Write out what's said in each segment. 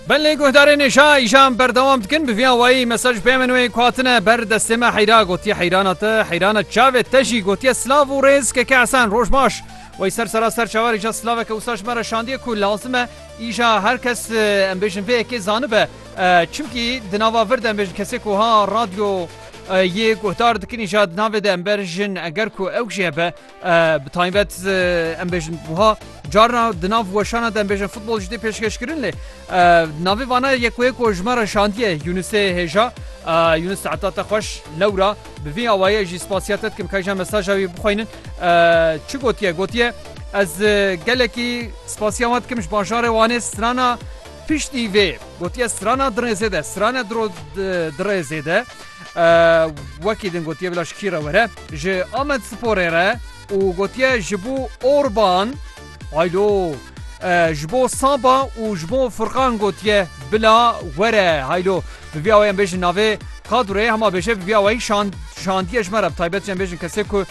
Belê guhdarên êşa îşan berdewam dikin bi vîya wayî mesaj pê min wê ku hatine ber destê me heyra gotiye heyrana te heyrana çavê te jî gotiye silav û rêz keke esen roj baş Wey ser sera ser çavar îşa silaveke wisa ji me re şandiye ku lazim e îşa her kes em bêjin vê yekê zanibe çimkî di nava vir de em bêjin kesê ku ha radyo yê guhdar dikin îşa di navê de em berjin eger ku ew jê be Bi taybet em bêjin buha carna di nav weşana dem bêjin futbol jî tê pêşkeşkirin lê navê vana yekoyê ku ji me re şandiye Yunusê hêja Yunus heta te xweş lewra bi vî awayê jî spasiya te dikim kayja mesaja wî bixweynin çi gotiye gotiye ez gelekî spasiya wan dikim ji bajarê wanê strana piştî vê gotiye strana dirêzê de strana dirêzê de Wekî din gotiye bila ji kî re were? Ji Amedsporê re û gotiye ji bo Orban haylo ji bo Saba û ji bo Furkan gotiye bila were haylo bi vî awayê em bêjin navê kadroyê hema bêje bi vî awayî şandiye ji me re bi taybet jî em bêjin kesê ku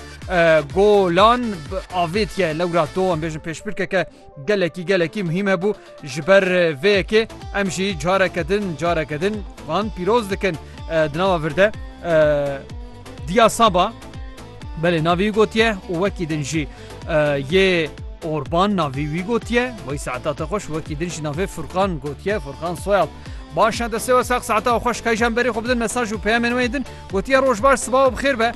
golan avêtiye lewra to em bêjin pêşbirkeke Gelekî gelekî muhîm hebû ji ber vê yekê em jî careke din careke din van pîroz dikin di nava vir de Diya Saba belê navî wî gotiye û wekî din jî yê Orban navî wî gotiye wî saeta te xweş wekî din jî navê Furkan gotiye Furkan soyad Baş e destê we sex saeta û xweş keyjan berî xwe bidin mesaj û peyemên wê din gotiye roj baş siba û bixêr be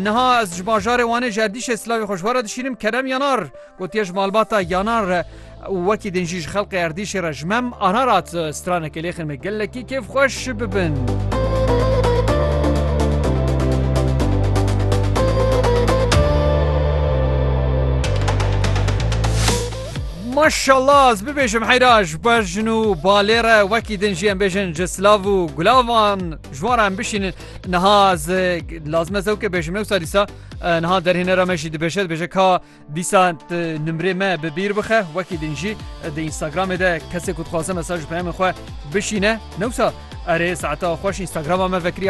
niha ez ji bajarê wanê jerdîşê silavê xweş were dişînim kerem yanar Gotiye ji malbata Yanar re û wekî din jî ji xelqê erdîşê re ji mem Ararat stranekê lêxin me gelekî kêfxweş bibin. Maşallah ez bibêjim heyraş bejin û balêre wekî din jiyên bêjin ji silav û gulavan ji wan em bişînin niha lazim ez ew ke bêjim newsa dîsa niha derhênera me jî dibêje dibêje ka Dîsa tu nimrê me bi bîr bixe, wekî din jî di Instagramê de kesê ku dixwaze mesaj û peyamên xwe bişîne, ne wisa erê saeta xweş Instagrama me vekirî